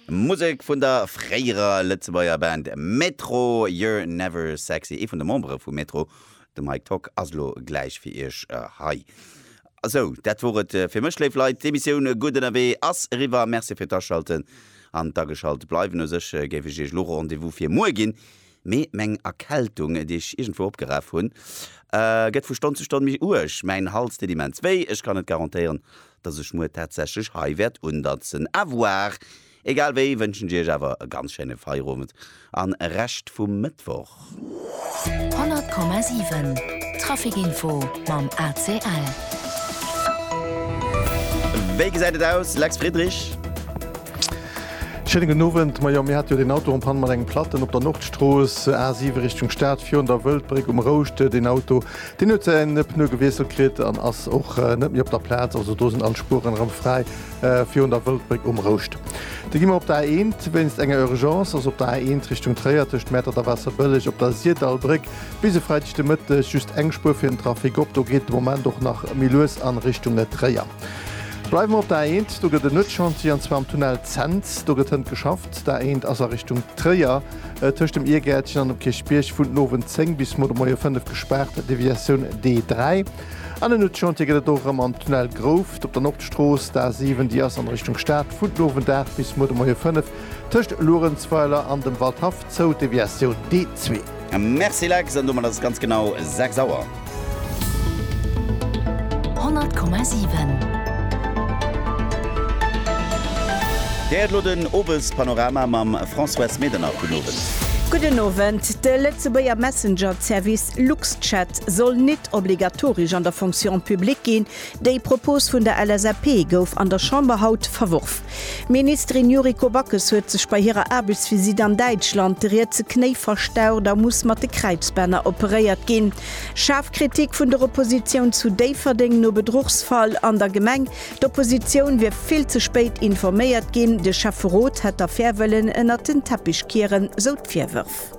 Musek vun der fréierer Lëtzebuerger Band Metro, You're Never Sexy. Ee vun de Membere vu Metro, de Mike Tock, ass elo gläich fir Iech hei. Sou, dat wor et fir mech, léif Leit. D'Emissioun Gutt ënnerwee ass eriwwer. Merci fir d'Aschalten an d'Ageschalt bleiwen. U sech géif ech Iech elo Rendez-vous fir muer ginn, mee meng Erkältung, déi ech iergendwou opgeraf hunn, gëtt vu Stonn zu Stonn méi uerg. Mäin Hals deet immens wéi, ech kann et garantéieren, dass ech muer tatsächlech hei wäert undanzen. À voir! Egal wéi wënschen ech iech awer e ganz schéine Feierowend an Rescht vum Mëttwoch. 100,7 Traficinfo mam ACL. Wéi gesäit et aus, Lex Friedrich? Schéine gudden Owend. Ma jo, mir hate jo deen Auto en Panne mat engem Platten op der Nordstrooss, A7 Richtung Stad, virun der Wëldbréck um Rouschte. Deen Auto Deen huet säin Pneu gewiesselt kritt an ass och net méi op der Plaz. Also do sinn all Spueren erëm fräi virun der Wëldbréck um Rouscht. Da gi mer op d'A1 wéinst enger Urgence. Also op der A1 Richtung Tréier tëscht Mäertert a Waasserbëlleg op der Sirdallbréck bis e Freideg de Mëtteg just eng Spuer fir den Trafic op. Do geet de Moment och nach méi lues an Richtung Tréier. Bleiwe mer op der A1, do gëtt en Nuetschantier an zwar am Tunnel Cents. Do gëtt hënt geschafft. D'A1 ass a Richtung Tréier. Tëscht dem Iergäertchen an dem Kierchbierg vun den Owend 10 bis muer de Moie 5 gespaart, Deviatioun D3. An en Nuetschantier gëtt et och erëm am Tunnel Grouft op der Nordstrooss, d'A7, déi ass an Richtung Stad vun den Owend 8 bis muer de Moie 5 tëscht Luerenzweiler an dem Waldhaff zou, Deviatioun D2. Merci Lex, an domat ass et ganz genau 6 Auer. Dir héiert elo den Owespanorama mam Françoise Medernach. Gudden Owend. Gudden Owend. De Lëtzebuerger Messenger-Zervice Luxchat soll nit obligatoresch an der Fonction publique ginn. Déi Propos vun der LSAP gouf an der Chamber haut verworf. D'Ministerin Yuriko Backes huet sech bei hirer Aarbechtsvisitt an Däitschland de rietse Knéi verstaucht a muss mat de Kräizbänner operéiert ginn. Schaarf Kritik vun der Oppositioun zu Déifferdeng no Bedruchsfall an der Gemeng, d'Oppositioun wier vill ze spéit informéiert ginn, de Schäfferot hätt d'Affär wëllen ënnert den Teppich kieren, sou d'Virwërf.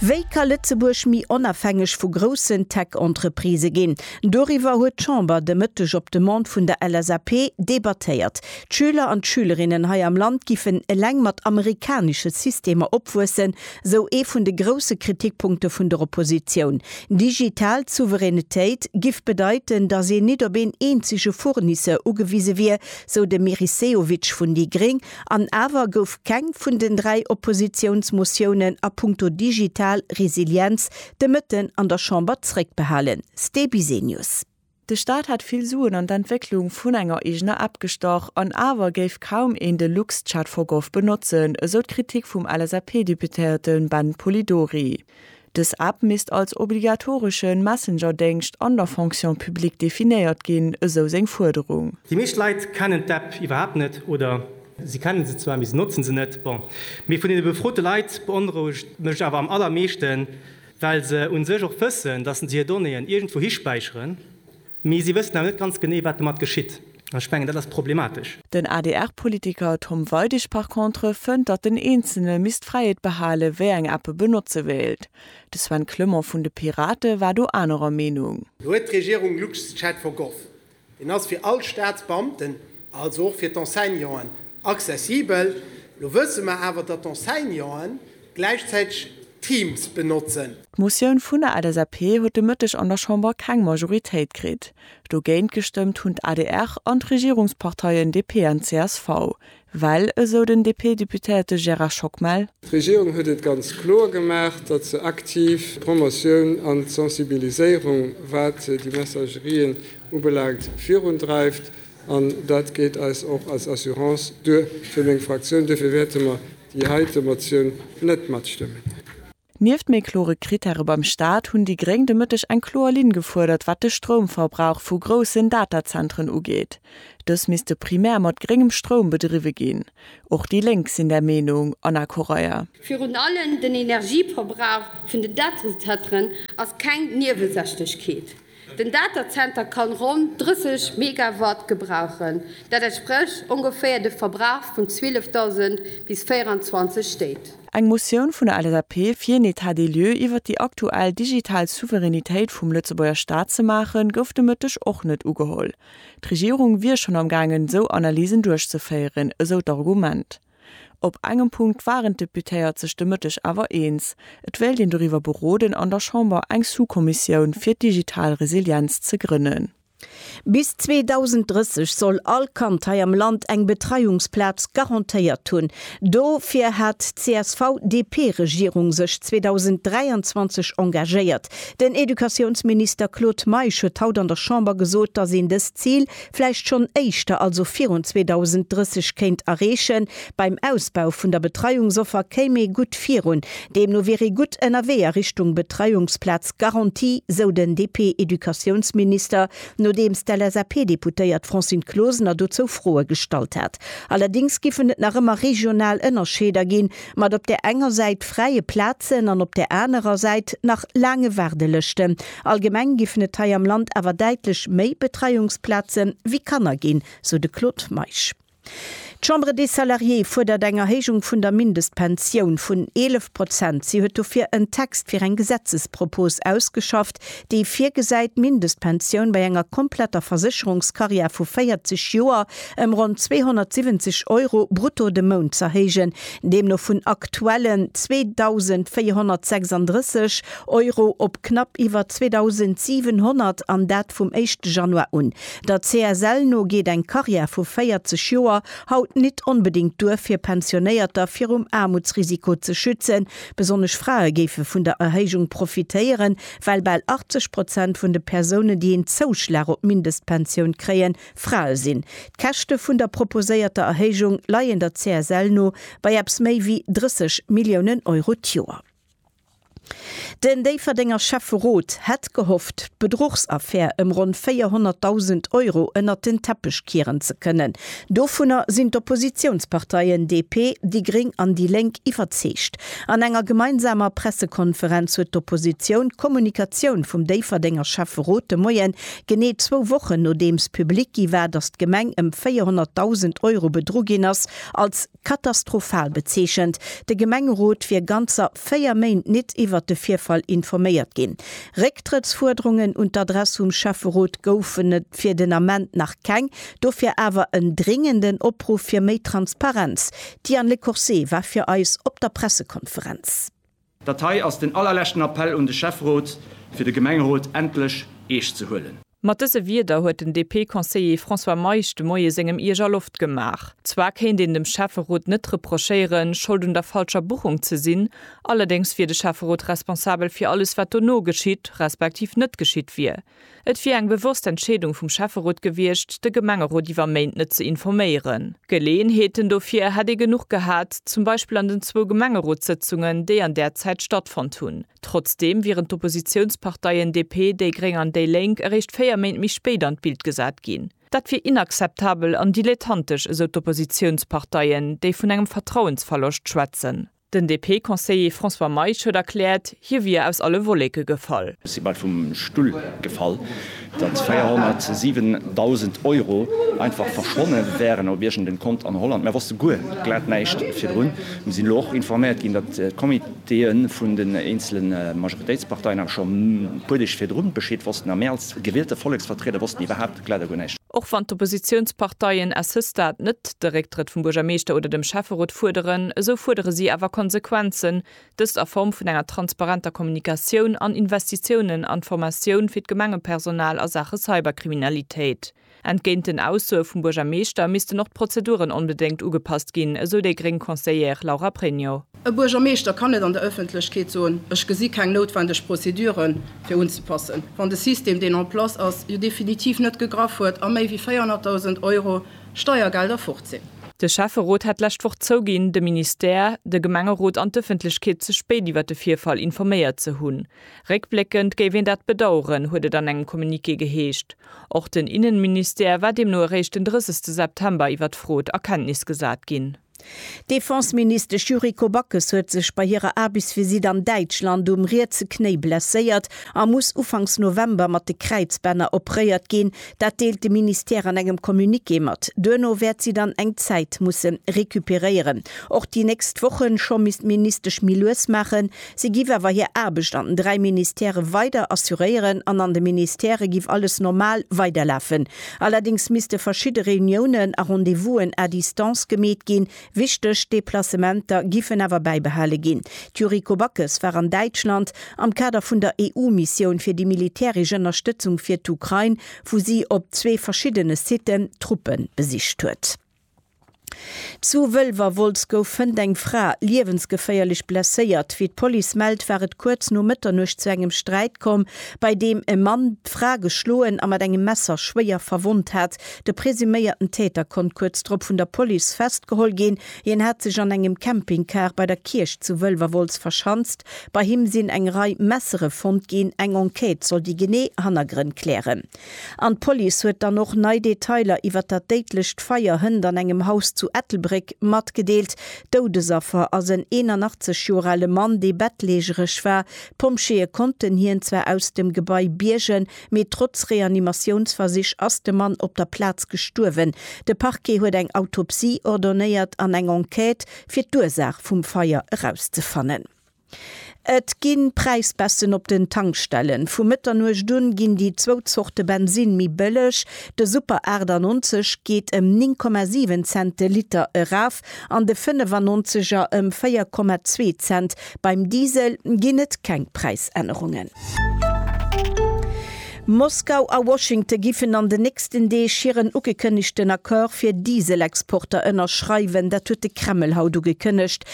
Wéi ka Lëtzebuerg méi onafhängeg vu groussen Tech-Entreprisë ginn? Doriwwer huet d'Chamber de Mëtteg op Demande vun der LSAP debattéiert. D'Schüler an d'Schülerinnen hei am Land giffen eleng mat amerikanesche Systemer opwuessen, sou ee vun de grousse Kritikpunkte vun der Oppositioun. Digital Souveränitéit giff bedeiten, datt een nit op een eenzege Fournisseur ugewise wier, sou de Meris Sehovic vun déi gréng. An awer gouf keng vun den dräi Oppositiounsmotiounen a punkto digital Resilienz de Mëtten an der Chamber zréckbehalen. Ste Bisenius. De Staat hätt vill Suen an d'Entwécklung vun enger eegener App gestach, an awer géif kaum een de Luxchat for gov benotzen, esou d'Kritik vum LSAP-Deputéierte Ben Polidori. Dës App misst als obligatoresche Messenger-Déngscht an der Fonction publique definéiert ginn, esou seng Fuerderung. Déi meescht Leit kennen d'App iwwerhaapt net oder. Si kennen se zwar, mee se notzen se net. Bon, mee vun deene befrote Leit beonrouegt mech awer am allermeeschten, well se un sech och wëssen, datt se hir Donnéeën iergendwou hispäicheren. Mee si wëssen awer net ganz genee, wat domat geschitt. An ech mengen, dat ass problematesch. Den ADR-Politiker Tom Weidig par contre fënnt, datt den Eenzele misst d'Fräiheet behale wéi eng App e benotze wéilt. De Sven Clement vun de Pirate war do anerer Meenung. Lo huet d'Regierung LuxChat for Gov. Deen ass fir all Staatsbeamten, also och fir d'Enseignanten accessibel. Lo wësse mer awer, datt d'Enseignanten gläichzäiteg Teams benotze. D'Motioun vun der LSAP huet de Mëtteg an der Chamber keng Majoritéit kritt. Dogéint gestëmmt hunn d'ADR an d'Regierungsparteien DP an csv, well, esou den DP-Deputéierte Gérard Schockmel, D'Regierung huet et ganz kloer gemaach, datt se aktiv d'Promotioun an d'Sensibiliséierung, wat déi Messagerien ubelaangt, virundreift. An dat geet eis och als Assurance duer fir meng Fraktioun. Duerfir wäerte mer déi heite Motioun net matstëmmen. Nieft méi klore Krittäre beim Staat hunn déi Gréng de Mëtteg eng kloer Linn gefuerdert, wat de Stroumverbrauch vu groussen Datazentren ugeet. Dës misste primär mat gréngem Stroum bedriwwe ginn. Och déi Lénk sinn där Meenung. Anna Correia. Virun allen den Energieverbrauch vun den Datazentren ass keng Niewesächlechkeet. Den Datazenter kann ronn 30 Megawatt gebrauchen, dat entsprécht ongeféier de Verbrauch vun 12.000 bis 24 Stéit. Eng Motioun vun der LSAP fir een Etat des lieux iwwert déi aktuell digital Souveränitéit vum Lëtzebuerger Staat ze maachen, gouf de Mëtteg och net ugeholl. D'Regierung wier schonn am gaangen, esou Analysen duerchzeféieren, esou d'Argument. Op engem Punkt waren d'Deputéiert sech de Mëtteg awer eens, Et wéilt een doriwwer beroden, an der Chamber eng Sous-Kommissioun fir d'digital Resilienz ze grënnen. Bis 2030 soll all Kand hei am Land eng Betreiungsplaz garantéiert hunn. Dofir hat d'CSV-DP-Regierung sech 2023 engagéiert. Den Educatiounsminister Claude Meisch huet haut an der Chamber gesot, datt een dëst Zil vläicht schonn éischter, also virun 2030, kéint erreechen. Beim Ausbau vun der Betreiungsoffer kéim ee gutt virun. Deemno wier ee gutt ënnerwee a Richtung Betreiungsplaz garanti, sou den DP-Educatiounsminister, nodeems d'LSAP-Deputéiert Francine Closener dozou Froe gestallt hat. Allerdéngs giffen et nach ëmmer regional Ënnerscheeder ginn, Mat op där enger Säit fräie Plazen an op där anerer Säit nach laange Waardelëschten. Allgemeng giffen et hei am Land awer däitlech méi Betreiungsplaze wéi Kanner ginn, sou de Claude Meisch. D'Chambre des Salariés fuerdert eng Erhéijung vun der Mindestpensioun vun 11 Prozent. Si huet dofir en Text fir eng Gesetzespropos ausgeschafft, dee virgesäit, d'Mindestpensioun bei enger kompletter Versécherungskarriär vu 40 Joer ëm ronn 270 Euro brutto de Mount z'erhéijen, deemno vun aktuellen 2.436 Euro op knapp iwwer 2.700, an dat vum éischte Januar un. Der CSL no geet eng Karriär vu 40 Joer haut nit onbedéngt duer, fir Pensionéierter virum Aarmutsrisiko ze schützen. Besonnesch Frae géife vun der Erhéijung profitéieren, well bal 80 Prozent vun de Persounen, déi een Zouschlag op d'Mindestpensioun kréien, Frae sinn. D'Käschte vun der proposéierter Erhéijung leien der CSL no bei eppes méi wéi 30 Milliounen Euro d'Joer. Den Déifferdenger Schäfferot hätt gehofft, d'Bedruchsaffär ëm ronn 400.000 Euro ënnert den Teppech kieren ze kënnen. Dovunner sinn d'Oppositiounsparteien DP, déi Gréng an déi Lénk iwwerzeegt. An enger gemeinsamer Pressekonferenz huet d'Oppositioun d'Kommunikatioun vum Déifferdenger Schäfferot de Moien Genee zwou Wochen nodeems public gi war, datt d'Gemeng ëm 400.000 Euro bedru ginn ass, als katastrophal bezeechent. De Gemengerot wier ganzer véier Méint nit iwwert de Virfall informéiert ginn. Récktrëttsfuerderungen un d'Adress vum Schäfferot goufen et fir den Ament nach keng, dofir awer en dringenden Opruff fir méi Transparenz. D'Diane Lecourcé war fir eis op der Pressekonferenz. Dat hei ass den allerleschten Appell un de Schäfferot, fir de Gemengerot endlech eescht ze huelen. Mat dëse Wierder huet den DP-Conseiller François Meisch de Moie sengem Ierger Loft gemaach. Zwar kéint een dem Schäfferot net reprochéieren, Schold un der falscher Buchung ze sinn, allerdéngs wier de Schäfferot responsabel fir alles, wat dono geschitt, respektiv net geschitt wier. Et wier eng bewosst Entscheedung vum Schäfferot gewiescht, de Gemengerot iwwer Méint net ze informéieren. Geleeënheeten dofir hätt ee genuch gehat, zum Beispill an den zwou Gemengerotssëtzungen, déi an där Zäit stattfonnt hunn. Trotzdeem wieren d'Oppositiounsparteien DP, déi Gréng an déi Lénk eréischt véier Méint méi spéit an d'Bild gesat ginn. Dat wier inakzeptabel an dilettantesch, esou d'Oppositiounsparteien, déi vun engem Vertrauensverloscht schwätzen. Den DP-Conseiller François Meisch huet erkläert, hie wier aus alle Wolleke gefall. Ech si bal vum Stull gefall, datt 407.000 Euro einfach verschwonne wären op iergend en Kont an Holland. Mer wosste guer glat näischt virdrun. Mer sinn elo och informéiert ginn, datt d'Comitéë vun den eenzele Majoritéitsparteien awer scho e puer Deeg virdru Bescheed wossten a mir als gewielte Volleksvertrieder wossten iwwerhaapt glat a guer näischt. Och wann d'Oppositiounsparteien à ce stade net de Récktrëtt vum Buergermeeschter oder dem Schäfferot fuerderen, esou fuerdere si awer Konsequenzen, dëst a Form vun enger transparenter Kommunikatioun an Investitiounen an d'Formatioun fir d'Gemengepersonal a Saache Cyberkriminalitéit. Entgéint den Aussoe vum Buergermeeschter missten och d'Prozeduren onbedéngt ugepasst ginn, esou déi gréng Conseillère Laura Pregno. E Buergermeeschter kann net an der Ëffentlechkeet soen, Ech gesi keng noutwendeg Prozedure fir unzepassen, wann de System, deen en place ass, jo definitiv net gegraff huet a méi wéi 400.000 Euro Steiergelder fort sinn. De Schäfferot hat d'lescht Woch zouginn, de Ministère, de Gemengerot an d'Ëffentlechkeet ze spéit iwwer de Virfall informéiert ze hunn. Réckbléckend géif een dat bedaueren, huet et an engem Communiqué geheescht. Och den Innenministère war deemno eréischt den 30 September iwwer d'Frot a Kenntnis gesat ginn. D'Defenseministesch Yuriko Backes huet sech bei hirer Aarbechtsvisitt an Däitschland um rietse Knéi blesséiert a muss ufanks November mat de Kräizbänner operéiert ginn. Dat deelt de Ministère an engem Communiqué mat. Duerno wäert si dann eng Zäit musse recuperéieren. Och déi nächst Woche scho misst d'Ministesch méi lues maachen, Si giff awer hir Aarbecht an den dräi Ministèrë weider assuréieren an an de Ministèrë giff alles normal weiderlafen. Allerdéngs misste verschidde Reuniounen a Rendez-vous'en à distance gemeet ginn. Wichteg Deplacementer giffen awer bäibehale ginn. D'Yuriko Backes war an Däitschland am Kader vun der EU-Missioun fir déi militäresch Ënnerstëtzung fir d'Ukrain, wou si op zwee verschiddene Siten Truppe besicht huet. Zu Wëlwerwolz gouf fënnt eng Fra liewensgeféierlech blesséiert. Wéi d'Police mellt, war et kuerz no Mëtternuecht zu engem Sträit komm, bei deem e Mann d'Fra geschloen a mat engem Messer schwéier verwonnt hat. De presuméierten Täter konnt kuerz drop vun der Police festgeholl ginn. Hien hat sech an engem Campingcar bei der Kierch zu Wëlwerwolz verschanzt. Bei him sinn eng Rei Messere fonnt ginn. Eng Enquête soll déi genee Hannergrënn klären. An d'Police huet dann och nei Detailer iwwert dat déidlecht Feier hënt an engem Haus zu Ettelbréck matgedeelt. Doudesaffer ass en 81 Joer ale Mann, dee bettleegereg war. D'Pompjeeë konnten hien zwar aus dem Gebai biergen, mee trotz Reanimatiounsversich ass de Mann op der Plaz gestuerwen. De Parquet huet eng Autopsie ordonéiert an eng Enquête, fir d'Ursaach vum Feier erauszefannen. Et ginn Präisbässen op den Tankstellen. Vu Mëtternuecht un ginn déi zwou Zorte Bensin méi bëlleg. De Super 98 geet ëm 9,7 Cent de Liter eraf an de 95 er ëm 4,2 Cent. Beim Diesel ginn et keng Präisännerungen. Moskau a Washington giffen an den nächsten Deeg hiren ugekënnegten Accord fir Diesel-Exporter ënnerschreiwen. Dat huet de Kreml haut ugekënnegt.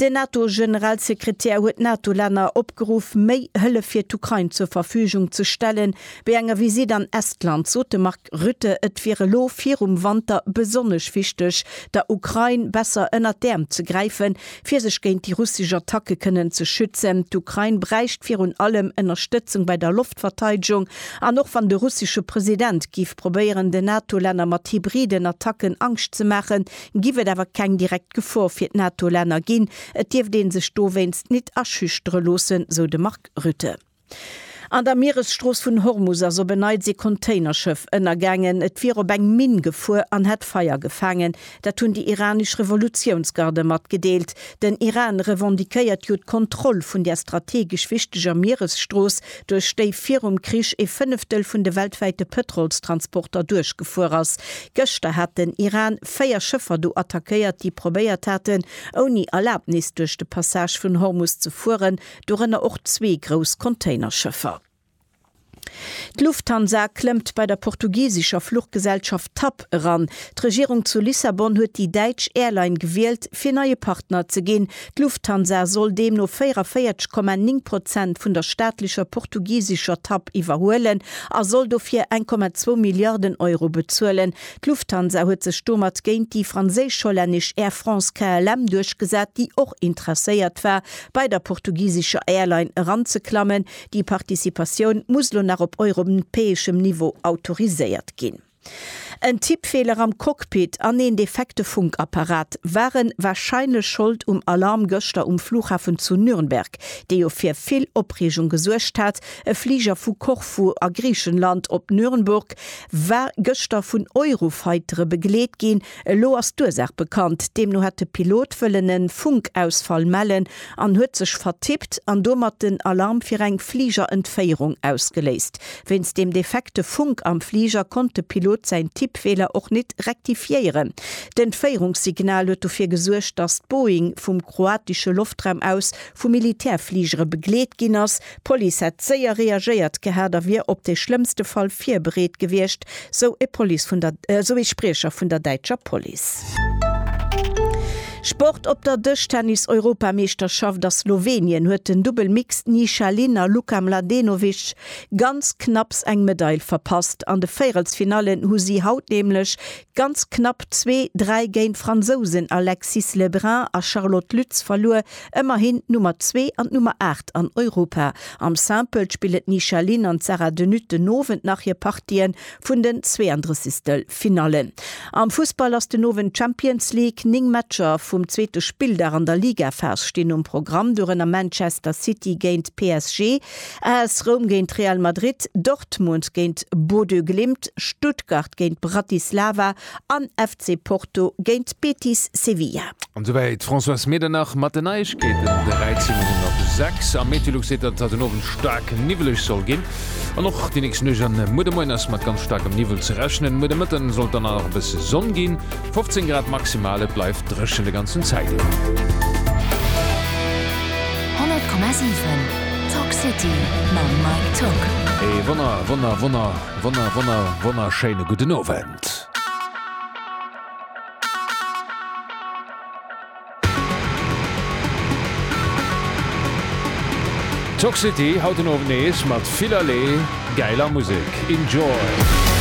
Den NATO-Generalsekretär huet d'NATO-Länner opgeruff, méi Hëllef fir d'Ukrain zur Verfügung ze stellen. Bei enger Visitt an Estland sot de Mark Rutte, et wier elo virum Wanter besonnesch wichteg, der Ukrain besser ënnert d'Äerm ze gräifen, fir sech géint déi russesch Attacke kënnen ze schützen. D'Ukrain bräicht virun allem Ënnerstëtzung bei der Loftverteidegung. An och wann de russesche President géif probéieren, den NATO-Länner mat hybriden Attacken Angscht ze maachen, Giff et awer keng direkt Gefor fir d'NATO-Länner ginn, et dierft een sech dowéinst nit aschüchtere loossen, sou de Mark Rutte. An der Mieresstrooss vun Hormus ass op en Neits ee Containerschëff ënnergaangen. Et wier op eng Minn gefuer an hätt Feier gefaangen. Dat hunn déi iranesch Revolutiounsgarde matgedeelt. Den Iran revendiquéiert jo d'Kontroll vun där strategesch wichteger Mieresstrooss duerch déi virum Krich ee Fënneftel vun de weltwäite Pëtrolstransporter duerchgefuer ass. Gëschter hat den Iran véier Schëffer do attackéiert, déi probéiert haten, ouni Erlabnis duerch de Passage vun Hormus ze fueren, dorënner och zwee grouss Containerschëffer. D'Lufthansa klëmmt bei der portugisescher Fluchgesellschaft TAP eran. D'Regierung zu Lissabon huet déi däitsch Airline gewielt, fir neie Partner ze ginn, D'Lufthansa soll deemno 44,9 Prozent vun der staatlecher portugisescher TAP iwwerhuelen a soll dofir 1,2 Milliarden Euro bezuelen. D'Lufthansa huet sech domat géint déi franséisch-hollännesch Air France-KLM duerchgesat, déi och interesséiert war, bei der portugisescher Airline eranzeklammen. Déi Participatioun muss lo nach op europäeschem Niveau autoriséiert ginn. En Tippfeeler am Cockpit an een defekte Funkapparat waren warscheinlech Schold um Alarm gëschter um Flughafen zu Nürnberg, dee jo fir vill Opreegung gesuergt hat. E Fliger vu Korfu a Griichenland op Nürnburg war gëschter vun Eurofighteren begleet ginn, Elo ass d'Ursaach bekannt. Deemno hätt de Pilot wëllen en Funkausfall mellen an huet sech vertippt an domat den Alarm fir eng Fligerentféierung ausgeléist. Wéinst dem defekte Funk am Fliger konnt de Pilot säin Tippfeeler och nit rektifiéieren. D'Entféierungssignal huet dofir gesuergt, dass d'Boeing vum kroatesche Loftraum aus vu Militärfligere begleet ginn ass, D'Police hätt séier reagéiert gehat a wier op dee schlëmmste Fall virbereet gewiescht, sou ee Police vun der, sou ee Spriecher vun der däitscher Police. Sport Op der Dëschtennis-Europameeschterschaft a Slowenien huet den Dubbel Mixte Nisha Lin a Luka Mladenovic ganz knapps eng Medail verpasst. An de Véierelsfinallen hu si haut nämlech ganz knapp zwee, dräi géint d'Fransousen Alexis Le Brun a Charlotte Lütz verluer. Ëmmerhin d'Nummer zwee an d'Nummer aacht an Europa. Am Simple spillen d'Nisha Lin an d'Sarah De Nutte den Owend nach hir Partië vun den Zweianddrëssigstel Finallen. Am Fussball ass den Owend Champions League. Néng Matcher vum zweete Spilldag an der Ligaphas stinn um Programm, dorënner Manchester City géint PSG, AS Roum géint Real Madrid, Dortmund géint Bodø Glimt, Stuttgart géint Bratislava An FC Porto géint Betis Sevilla. An souwäit d'Françoise Medernach mat den Neiegkeeten. De Räit si Minuten op 6 a Meteolux seet, datt et den Owend staark niwweleg soll ginn. An och déi nächst Nuecht a muer de Moien ass mat ganz staarkem Niwwel ze rechnen. Muer de Mëtten soll et dann nach e bësse Sonn ginn, 15 Grad maximal. Et bleift dréchen de ganzen Zäit iwwer. 100,7 Talk City mam Mike Togg. Ee wonner wonner wonner wonner wonner wonnerschéine gudden Owend. Land. Toxity haut den Owend nees mat vill Allez gäiler Musek. Enjoy!